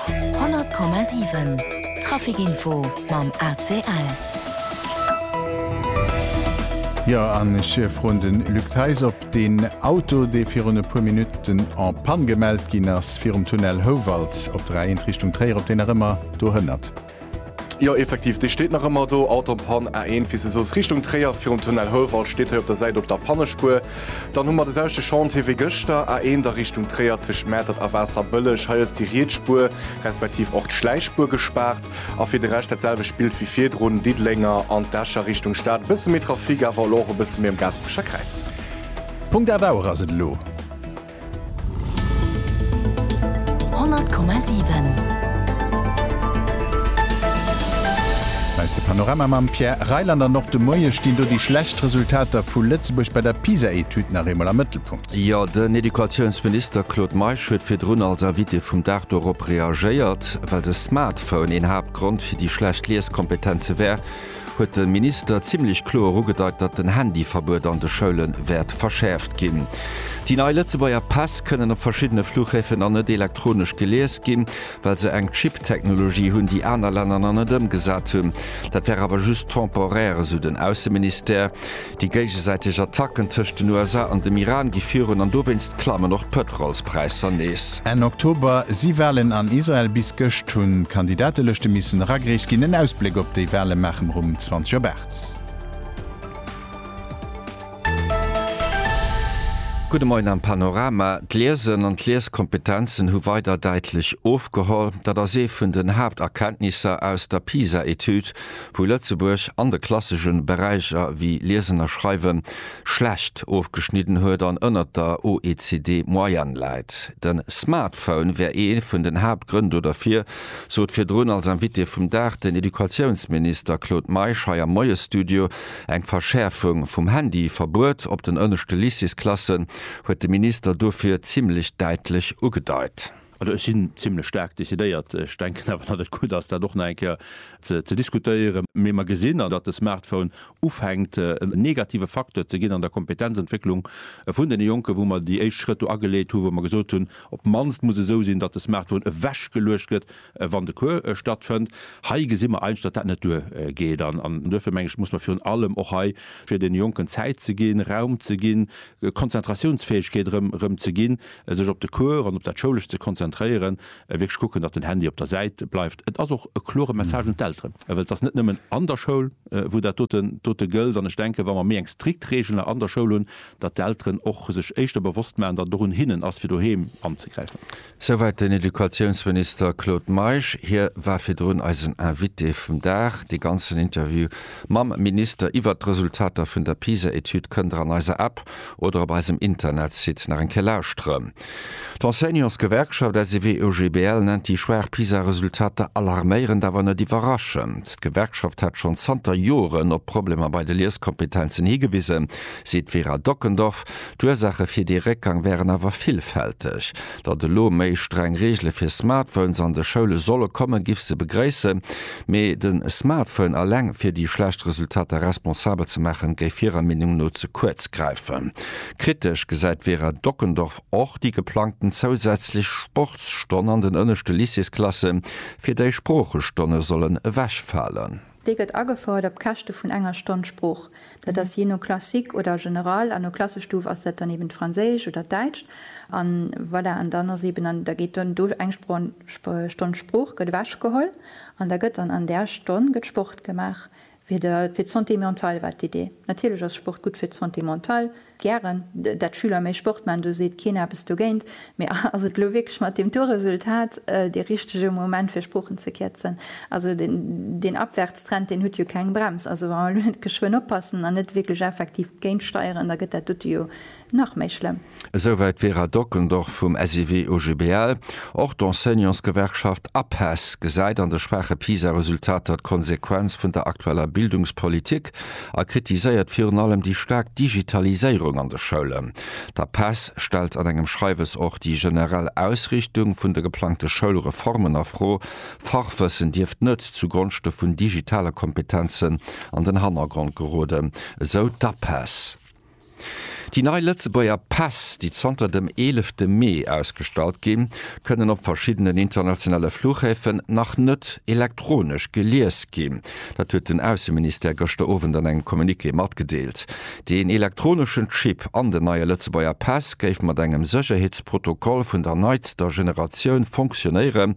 100,7 Trafic Info mam ACL. Jo, an ech froen de Luc Theis, ob deen Auto, dee virun e puer Minutten en panne gemellt ginn ass virum Tunnel Houwald op der A1 Richtung Tréier, ob deen nach ëmmer dohënnert. Jo effektiv, déi steet nach ëmmer do, Autobahn A1 wéi s de soos, Richtung Tréier virum Tunnel Houwald steet hei op der Säit op der Pannespuer. Dann hu mer de selwechte Chantier wéi gëschter, A1 da Richtung Tréier tëscht Mäertert a Waasserbëlleg. Hei ass déi riets Spuer respektiv och d'Schläichspuer gespaart. A fir de Rescht dat selwecht Bild wéi virdrun, Diddlénger an d'Escher Richtung Stad e bësse méi Trafic, awer elo och e bësse méi um Gaasperecher Kräiz. Punkt Av Auer ass et elo. 100,7. Eis de Panorama mam Pierre Reyland an och de Moie stinn do déi schlecht Resultater vu Lëtzebuerg bei der PISA-Etüd nach eemol am Mëttelpunkt. Jo, den Educatiounsminister Claude Meisch huet virdrun als Invité vum Dag dorop reagéiert. Well de Smartphone een Haaptgrond fir déi schlecht Lieskompetenze wär, huet de Minister zimmlech kloer ugedeit, datt den Handyverbuet an de Schoule wäert verschäerft ginn. Déi nei Lëtzebuerger Päss kënnen op verschiddene Flughäfen nach net elektronesch gelies ginn, well se eng Chip-Technologie hunn, déi aner Länner nach net ëmgesat hunn. Dat wär awer just temporaire, esou den Ausseministère. Déi géigesäiteg Attacken tëscht den USA an dem Iran gi virun an dowéinst klammen och d'Pëtrolspräisser nees. Enn Oktober si Walen an Israel. Bis gëscht hunn d'Kandidatelëschte missen eragereecht ginn. En Ausbléck op déi Wale maache mer um 20 op 8. Gudde Moien am Panorama. D'Liesen an d'Lieskompetenzen hu weider däitlech ofgeholl. Dat ass ee vun den Haapterkenntnisser aus der PISA-Etüd. wou Lëtzebuerg an de klassesche Beräicher wéi Liesen a Schreiwe schlecht ofgeschnidden huet an ënnert der OECD-Moyenne läit. De Smartphone wär ee vun den Haaptgrënn do derfir, sot virdrun als Invité vum Dag den Educatiounsminister Claude Meisch hei am Moiesstudio. Eng Verschäerfung vum Handy-Verbuet op den ënneschte Lycéesklassen huet de Minister dofir zimmlech däitlech ugedeit. Also ech sinn zimlech staark decidéiert. Ech denken awer, datt et gutt ass, dat och nach eng Kéier ze diskutéieren. Mee mer gesinn an, datt de Smartphone ufänkt en negative Facteur ze ginn an der Kompetenzentwécklung vun deene Jonken, wou mer déi éischt Schrëtt do ageleet hunn, wou mer gesot hunn, op d'mannst muss esou sinn, datt de Smartphone ewechgeluecht gëtt, wann de Cours stattfënnt. Hei gesi mer eigentlech, datt dat net duergeet an duerfir, meng ech, muss mer virun allem och hei, fir deene Jonken Zäit ze ginn, Raum ze ginn, Konzentratiounsfäegkeet erëm ze ginn, sech op de Cours an op dat Schoulescht ze konzentréieren, wierklech kucken, datt den Handy op der Säit bleift. Et ass och e klore Message un d'Elteren, well et ass net nëmmen an der Schoul, wou dat dote gëllt. An ech denken, wa mer méi eng strikt Reegel an der Schoul hunn, datt d'Elteren och sech éischter bewosst maachen, datt et och un hinnen ass, fir doheem anzegräifen. Souwäit den Educatiounsminister Claude Meisch. Hie war virdrun eisen Invité vum Dag. Dee ganzen Interview Mam Minister iwwert d'Resultater vun der PISA-Etüd kënnt der an eiser App oder op eisem Internetsite nach eng Kéier lauschtere. D'Enseignantsgewerkschaft SEW-EUGBL nennt déi schwaach PISA-Resultater alarméierend, awer net iwwerraschend. D'Gewerkschaft hat schonn zanter Joren op Problemer bei de Lieskompetenzen higewisen, seet d'Vera Dockendorf. D'Ursaache fir dee Réckgang wären awer villfälteg. Datt elo méi streng Reegele fir Smartphones an de Schoule solle kommen, giff se begréissen, mee de Smartphone eleng fir déi schlecht Resultater responsabel ze maachen, géif hirer Meenung no ze kuerz gräifen. Kritesch gesäit d'Vera Dockendorf och déi geplangten zousätzlech Sportsstonn an den ënneschte Lycéesklassen, fir déi Sproochestonne sollen ewechfalen. Dee gëtt agefouert op Käschte vun enger Stonn Sprooch. Dat ass jee no Classique oder General. An no Klassestuf ass dat dann eben d'Franséischt oder d'Däitscht. An voilà, an dann ass eben, da geet dann do eng Stonn Sprooch gëtt ewechgeholl an da gëtt dann an där Stonn gëtt Sport gemaach fir d'Santé mentale war d'Idee. Natierlech ass Sport gutt fir d'Santé mentale. Gären, dat Schüler méi Sport man, do seet keen eppes dogéint. Mee ass et elo wierklech mat deem Tourresultat dee richtege Moment fir Sproochen ze kierzen? Also deen Abwärtstrend, deen huet jo keng Brems. Also wa mer elo net geschwënn oppassen an net wierklech effektiv géintsteieren, da gëtt dat dote jo nach méi schlëmm. Esouwäit d'Vera Dockendorf vum SIW-OGBL. Och d'Enseignantsgewerkschaft APESS gesäit an de schwaache PISA-Resultater d'Konsequenz vun der aktueller Bildungspolitik. a kritiséiert virun allem déi staark Digitaliséierung an de Schoulen. D'APESS stellt an engem Schreiwes och déi generell Ausrichtung vun de geplangte Schoulreformen a Fro. Fachwëssen dierft net zu Gonschte vun digitale Kompetenzen an den Hannergrond geroden, esou d'APESS. Déi nei Lëtzebuerger Päss, déi zanter dem eelefte Mee ausgestallt ginn, kënnen op verschiddenen internationale Fluchhäfen nach net elektronesch gelies ginn. Dat huet den Ausseministère gëschter Owend an engem Communiqué matgedeelt. Deen elektroneschen Chip an den neie Lëtzebuerger Päss géif mat engem Sécherheetsprotokoll vun der neitster Generatioun fonctionéieren,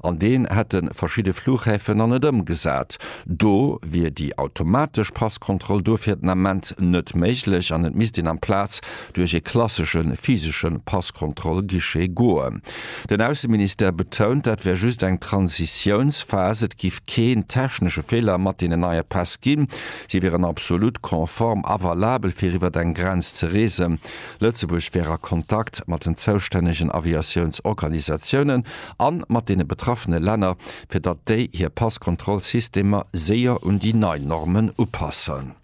An deen hätte verschidde Flughäfen nach net ëmgesat. Do wier déi automatesch Passkontroll duerfir den Ament net méiglech an et misst een amplaz duerch ee klassesche physesche Passkontroll-Guichet goen. Den Ausseministère betount, dat wär just eng Transitiounsphas, et géif keen technesche Feeler mat deenen neie Päss ginn, si wieren absolut konform a valabel fir iwwer eng Grenz ze reesen. Lëtzebuerg wär a Kontakt mat den zoustännegen Aviatiounsorganisatiounen a mat deene betraffene Länner, fir datt déi hir Passkontrollsystemer séier un déi nei Normen upassen.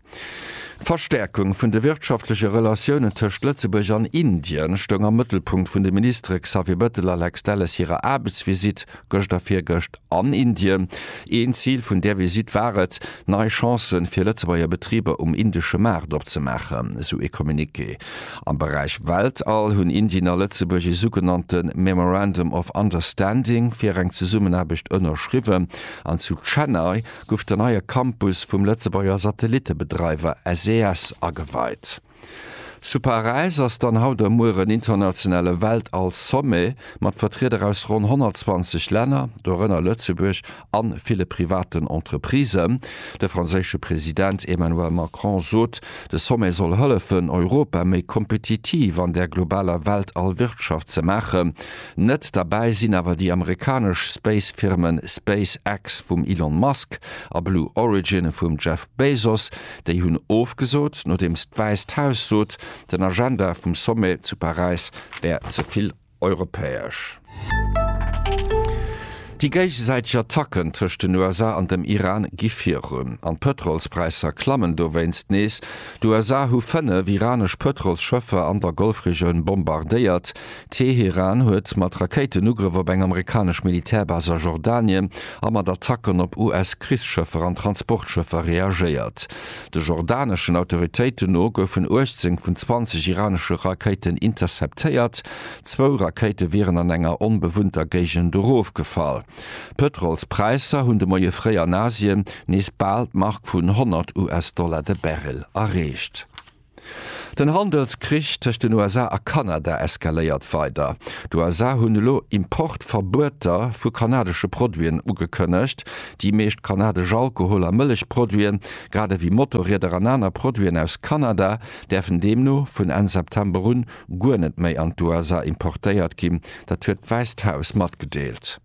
D'Verstäerkung vun de wirtschaftleche Relatiounen tëscht Lëtzebuerg an Indien stoung am Mëttelpunkt vun de Ministere Xavier Bettel a Lex Delles hirer Aarbechtsvisitt gëscht a virgëscht an Indien. Een Zil vun där Visitt war et, nei Chancen fir Lëtzebuerger Betriber um indesche Maart opzemaachen, esou ee Communiqué. Am Beräich Weltall hunn Indien a Lëtzebuerg ee sougenannte Memorandum of Understanding fir eng Zesummenaarbecht ënnerschriwwen an zu Chennai guff den neie Campus vum Lëtzebuerger Satellittebedreiwer SES ageweit. Zu Paräis ass dann haut a muer en internationale Weltall-Sommet mat Vertrieder aus ronn 120 Länner, dorënner Lëtzebuerg, a ville privaten Entreprisen. De franséische President Emmanuel Macron sot, de Sommet soll hëllefen, Europa méi kompetitiv an der globaler Weltall-Wirtschaft ze maachen. Net derbäi sinn awer déi amerikanesch Space-Firmen SpaceX vum Elon Musk a Blue Origin vum Jeff Bezos. Déi hunn ofgesot, nodeems d'Wäisst Haus sot, den Agenda vum Sommet zu Paräis wär ze vill. europäesch. Déi géigesäiteg Attacken tëscht den USA an dem Iran gi virun an d'Pëtrolspräisser klammen dowéinst nees. D'USA hu fënnef iranesch Pëtrolsschëffer an der Golfregioun bombardéiert. Teheran huet mat Rakéitenugrëff op eng amerikanesch Militärbase a Jordanien a mat Attacken op US-Krichsschëffer an Transportschëffer reagéiert. De jordaneschen Autoritéiten no goufen 18 vun 20 iranesche Rakéiten interceptéiert. Zwou Rakéite wieren an enger onbewunnter Géigend erofgefall. D'Pëtrolspräisser hunn de Moie fréi an Asien nees bal d'Mark vun 100 US-Dollar de Barrel erreecht. Den Handelskrich tëscht den USA a Kanada eskaléiert weider. D'USA hunn elo Importverbueter vu kanadesche Produiten ugekënnegt. Déi meescht kanadesch Alkohol a Mëllechproduiten, grad ewéi Motorrieder an aner Produiten aus Kanada, däerfen deemno vun Enn September un guer net méi an d'USA importéiert ginn. Dat huet d'Wäisst Haus matgedeelt.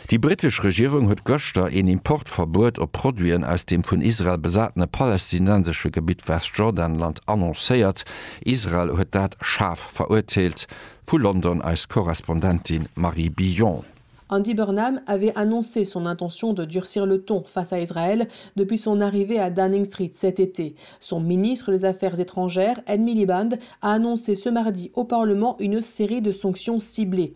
Déi brittesch Regierung huet gëschter een Importverbuet op Produiten aus dem vun Israel besatene palästinensesche Gebitt Westjordanland annoncéiert. Israel huet dat schaarf verurteelt. Vu London eis Korrespondentin Marie Billon. Andy Burnham avait annoncé son intention de durcir le ton face à Israël depuis son arrivée à Downing Street cet été. Son ministre des Affaires étrangères, Ed Miliband, a annoncé ce mardi au Parlement une série de sanctions ciblées.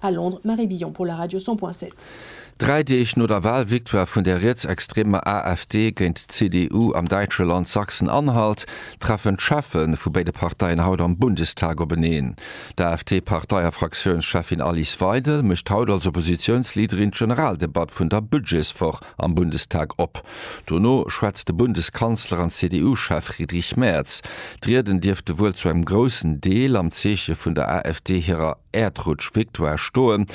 A Londres, Marie Billon pour la radio 100.7. Dräi Deeg no der Walvictoire vun der rietsextremer AfD géint d'CDU am däitsche Land Sachsen-Anhalt, treffen d'Cheffe vu béide Parteien haut am Bundestag openeen. D'AfD-Partei a Fraktiounscheffin Alice Weidel mécht haut als Oppositiounsleaderin d'Generaldebatt vun der Budgetswoch am Bundestag op. Dono schwätzt de Bundeskanzler an CDU-Chef Friedrich Merz. D'Rieden dierfte wuel zu engem groussen Deel am Zeeche vun der AfD hirer. Äerdrutsch-Victoire stoen.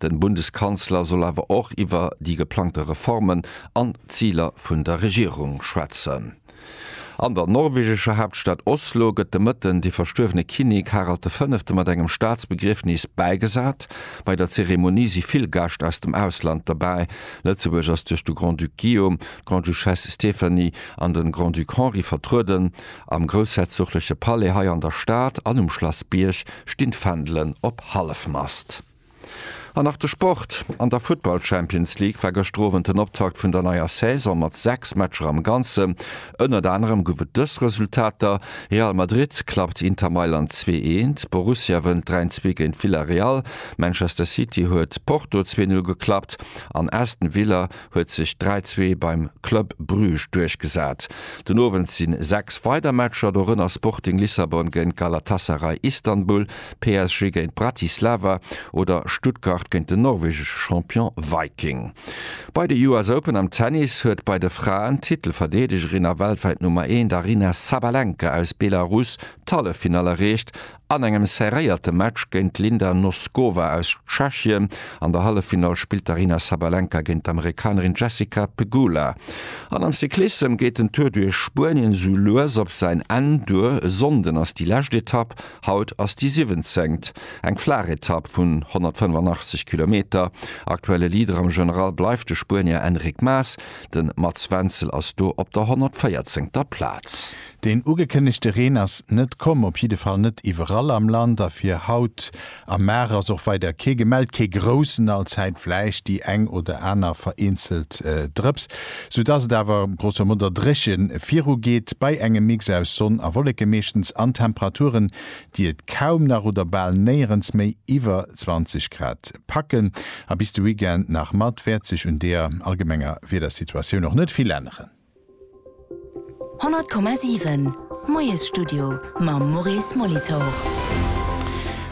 Den Bundeskanzler soll awer och iwwer déi geplangte Reformen an Ziler vun der Regierung schwätzen. An der norwegescher Haaptstad Oslo gëtt de Mëtten de verstuerwene Kinnek Harald de Fënnefte mat engem Staatsbegriefnis bäigesat. Bei der Zeremonie si vill Gäscht aus dem Ausland dobäi. Lëtzebuerg ass duerch de Grand-Duc Guillaume, d'Grande-Duchesse Stéphanie an de Grand-Duc Henri vertrueden. Am groussherzogleche Palais hei an der Stad an um Schlass Bierg stinn d'Fändelen op Hallefmast. An nach de Sport, An der Futtball Champions League war gëschter Owend den Optakt vun der neier Saison mat 6 Matcher am Ganzen. Ënnert anerem gouf et dës Resultater, Real Madrid klappt Inter Mailand 2 eent, Borussia wënnt 3 en zwee géint Villarreal, Manchester City huet Porto 2 null geklappt an Aston Villa huet sech 3, 2 beim Club Bruges duerchgesat. Den Owend si 6 weider Matcher, dorënner Sporting Lissabon géint Galatasaray Istanbul, PSG géint Bratislava oder Stuttgart géint den norwegesche Champion Viking. Bei de US Open am Tennis huet bei de Fraen d'Titelverdeedegerin a weltwäit Nummer 1 Aryna Sabalenka aus Belarus d'Halleffinall erreecht An engem serréierte Match géint d'Linda Noskova aus Tschechien. An der Halleffinall spillt d'Aryna Sabalenka géint d'Amerikanerin Jessica Pegula. An am Cyclissem geet den Tour duerch Spuenien esou lues op säin Enn duer. E Sonnden ass déi lescht Etapp, haut ass déi siwwenzengt. Eng flaach Etapp vun 185 Kilometer. Aktuelle Leader am General bleift de Spuenier Enric Mas. De Mats Wenzel ass do op der 114. Plaz. Deen ugekënnegte Reen ass net komm, op jidde Fall net iwwerall am Land a fir haut a mar ass och weider kee gemellt, kee groussen, allzäit vläicht déi eng oder aner vereenzelt Drëps, soudass et awer grosso moder dréche virugeet bei engem Mix aus Sonn a Wolleke meeschtens an Temperaturen, déi et kaum nach oder bal néierens méi iwwer 20 Grad packen. A bis de Weekend nach mat wäert sech un deer allgemenger Wiedersituatioun och net vill änneren. 100,7 Moiesstudio mam Maurice Molitor.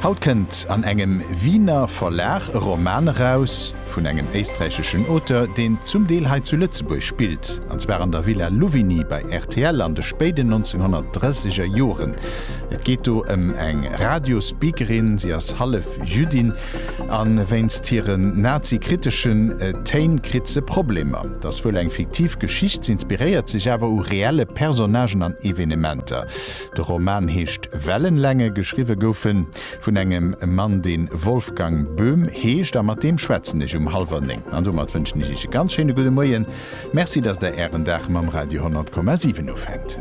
Haut kënnt an engem Wiener Verlag e Roman eraus vun engem éisträicheschen Auteur, deen zum Deel hei zu Lëtzebuerg spillt, an zwar an der Villa Louvigny bei rtl an de spéiden 1930er Joren. Et geet do ëm eng Radio-Speakerin, si ass hallef Jüddin, A wéinst hiren Nazi-kriteschen Téin kritt se Problemer. Et ass wuel eng fiktiv Geschicht, s'inspiréiert sech awer u reelle Personnagen an Evenementer. De Roman heescht Wellenlänge, geschriwwe gouf e vun engem Mann, dee Wolfgang Böhm heescht, a mat deem schwätzen ech um hallwer néng. An domat wënschen ech Iech e ganz schéine gudde Moien. Merci, datt Der Ären Dag mam Radio 100,7 ufänkt.